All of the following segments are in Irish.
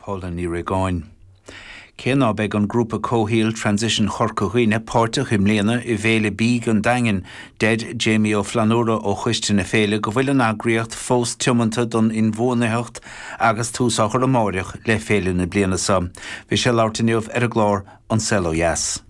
Paula Ní Réagáin. Cé ná beidh an grúpa comhshaoil Transition Chorca Dhuibhne páirteach i mbliana i bhFéile Bídh an Daingin, deir Jamie Ó Flannúra ó choiste na féile go bhfuil an eagraíocht fós tiomanta don inbhuanaitheacht agus tús á chur amáireach le féile na bliana seo. Bhí sé ag labhairt inniu ar an gclár An Saol Ó Dheas.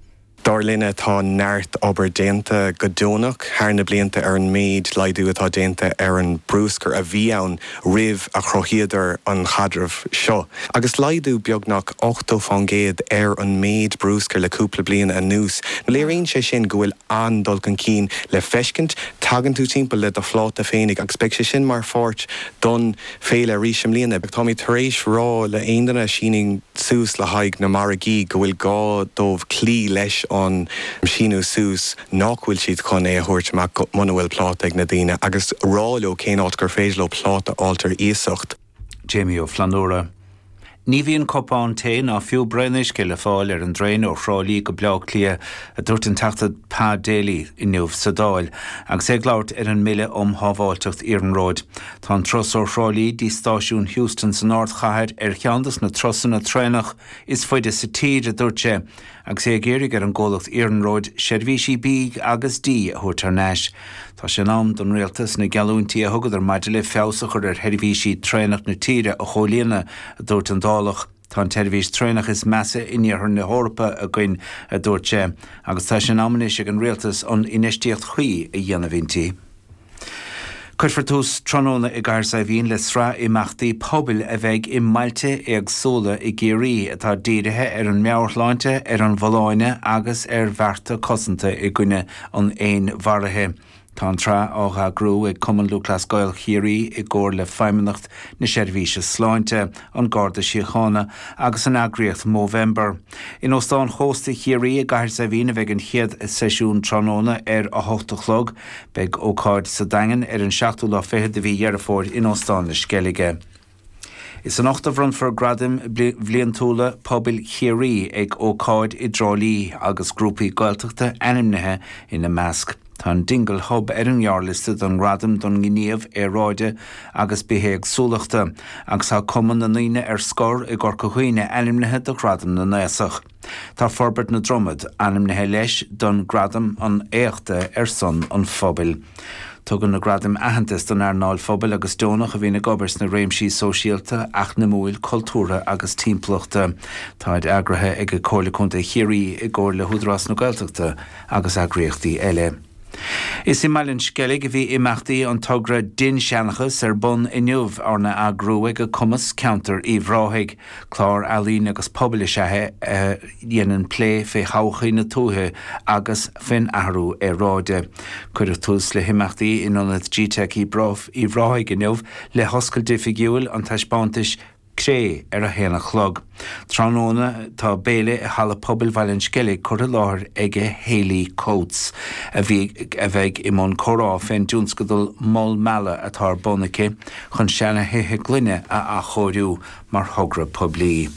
Dar linne tá neart obair déanta go deonach thar na blianta ar an méid laghdú atá déanta ar an mbrúscar a bhí ann roimh a chruthaíodar an caidreamh seo. Agus laghdú beagnach 80% ar an méid brúscair le cúpla bliain anuas, léiríonn sé sin go bhfuil an-dul chun cinn le feiscint, tagann tú timpeall le do phláta féinig agus beidh sé sin mar pháirt don Féile arís i mbliana. Táimid tar éis rá le aon duine a síneann suas le haghaidh na margaí go bhfuil gá dóibh cloí leis an síniú suas, nách bhfuil siad chun é a thabhairt amach muna bhfuil pláta ag na daoine agus rá leo cén áit gur féidir leo pláta a fháilt ar iasacht. Jamie Ó Flannúra. Ní bhíonn cupán tae ná fiú braon uisce le fáil ar an dtraein ó Thrá Lí go Baile Átha Cliath, a dúirt an Teachta Pa Daly inniu sa Dáil agus é ag labhairt ar an mBille um Shábháilteacht Iarnróid. Tá an turas ó Thrá Lí go dtí Stáisiún Heuston san ardchathair ar cheann dos na turasanna traenach is faide sa tír, a dúirt sé, Agus é ag iarraidh ar an gcomhlacht iarnróid seirbhísí bídh agus dí a thabhairt thar n-ais, tá sé in am don Rialtas na geallúintí a thugadar maidir le feabhas a chur ar sheirbhísí traenach na tíre a chomhlíonadh, a dúirt an Dálach. Tá an tseirbhís traenach is measa in iarthar na hEorpa againn, a dúirt sé, agus tá sé in am anois ag an Rialtas an infheistíocht chuí a dhéanamh inti. Cuirfear tús tráthnóna i gCathair Saidhbhín le sraith imeachtaí pobail a bheidh i mbailte éagsúla i gCiarraí, atá dírithe ar an meabhairshláinte, ar an bhfolláine agus ar bhearta cosanta i gcoinne an fhéinmharaithe. Tá an tsraith á heagrú ag Cumann Lúthchleas Gael Chiarraí i gcomhar le Feidhmeannacht na Seirbhíse Sláinte, An Garda Síochána agus an eagraíocht Movember. In Óstán Chósta Chiarraí i gCathair Saidhbhín a bheidh an chéad seisiún tráthnóna ar a hocht a chlog. Beidh ócáid sa Daingean ar an seachtú lá fichead de mhí Dheireadh Fómhair in Óstán na Sceilge. Is anocht a bhronnfar gradaim bhliantúla pobail Chiarraí ag ócáid i dTrá Lí agus grúpaí Gaeltachta ainmnithe ina measc. Tá an Dingle Hub ar an ngearrliosta don Ghradam don nGníomh Aeráide agus Bithéagsúlachta agus tá Cumann na nDaoine ar Scor i gCorca Dhuibhne ainmnithe do Ghradam na nAosach. Tá Forbairt na Dromoda ainmnithe leis don Gradam an Éachta ar son an Phobail. Tugann na gradaim aitheantas don earnáil phobail agus deonach a bhíonn ag obair sna réimsí sóisialta, eacnamúil, cultúrtha agus timpeallachta. Táid eagraithe ag Comhairle Contae Chiarraí i gcomhair le hÚdarás na Gaeltachta. agus eagraíochtaí eile. Is i mBaile an Sceilg a bhí imeachtaí an togra 'Dinnseanchas' ar bun inniu, arna eagrú ag Cumas, Ceantar Uíbh Ráthaigh. Clár ealaíne agus pobail is ea é a dhéanann plé fé thodhchaí na tuaithe agus fén athrú aeráide. Cuireadh tús le himeachtaí in Ionad GTeic Uíbh Ráthaigh inniu le hoscailt oifigiúil an taispeántais, Cré, Ar a haon a chlog tráthnóna tá béile i Halla Pobail Bhaile an Sceilg curtha i láthair aige Holly Coates, a bhí, a bheidh i mbun comhrá fén dtionscadal Mol Meala atá ar bun aici chun seana thithe gloine a athchóiriú mar thogra poiblí.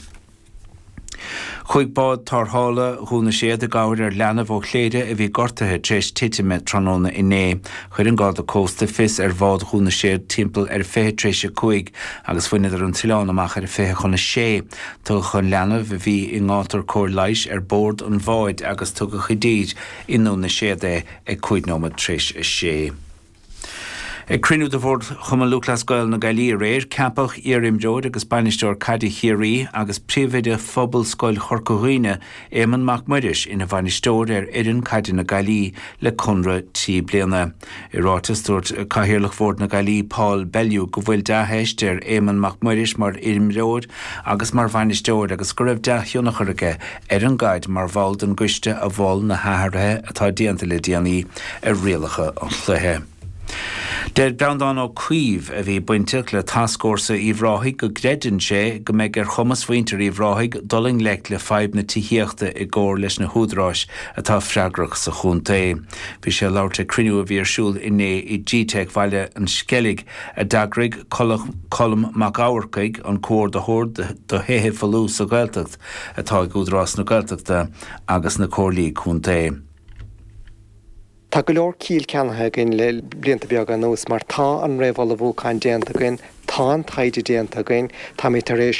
Chuaigh bád tárrthála Dhún na Séad i gcabhair ar leanbh ó Chléire a bhí gortaithe tar éis titime tráthnóna inné. Chuir an Garda Cósta fios ar bhád Dhún na Séad timpeall ar a fiche tar éis a cúig agus bhaineadar an t-oileán amach ar a fiche chun a sé. Tugadh an leanbh, a bhí i ngátar cabhair leighis, ar bord an bháid agus tugadh i dtír i nDún na Séad é ag cúig nóiméad tar éis a sé. Ag cruinniú de Bhord Chumann Lúthchleas Gael na Gaillimhe aréir, ceapadh iar-imreoir agus bainisteoir caide Chiarraí agus príomhoide Phobalscoil Chorca Dhuibhne, Éamonn Mac Muiris ina bhainisteoir ar fhoireann caide na Gaillimhe le conradh trí bliana. I ráiteas, dúirt Cathaoirleach Bhord na Gaillimhe, Paul Bellew go bhfuil dea-theist ar Éamonn Mac Muiris mar imreoir agus mar bhainisteoir agus go raibh dea-thionchar aige ar an gcaid mar bhall den gcoiste a mhol na hathruithe atá déanta le déanaí ar rialacha an chluiche. Deir Breandán Ó Caoimh, a bhí bainteach le tascfhórsa Uíbh Ráthaigh go gcreideann sé go mbeidh ar chumas mhuintir Uíbh Ráthaigh dul i ngleic le fadhb na tithíochta i gcomhar leis na húdaráis atá freagrach sa chontae. Bhí sé ag labhairt ag cruinniú a bhí ar siúl inné i G-Teic Bhaile an Sceilg a d'eagraigh Colm Mac Eachmharcaigh, an Comhordaitheoir do Thithe Folmha sa Ghaeltacht. atá ag Údarás na Gaeltachta agus na Comhairlí Contae. Tá go leor ciall ceannaithe againn le blianta beaga anuas mar tá an réamhullmhúchán déanta againn, tá an taighde déanta againn, táimid tar éis.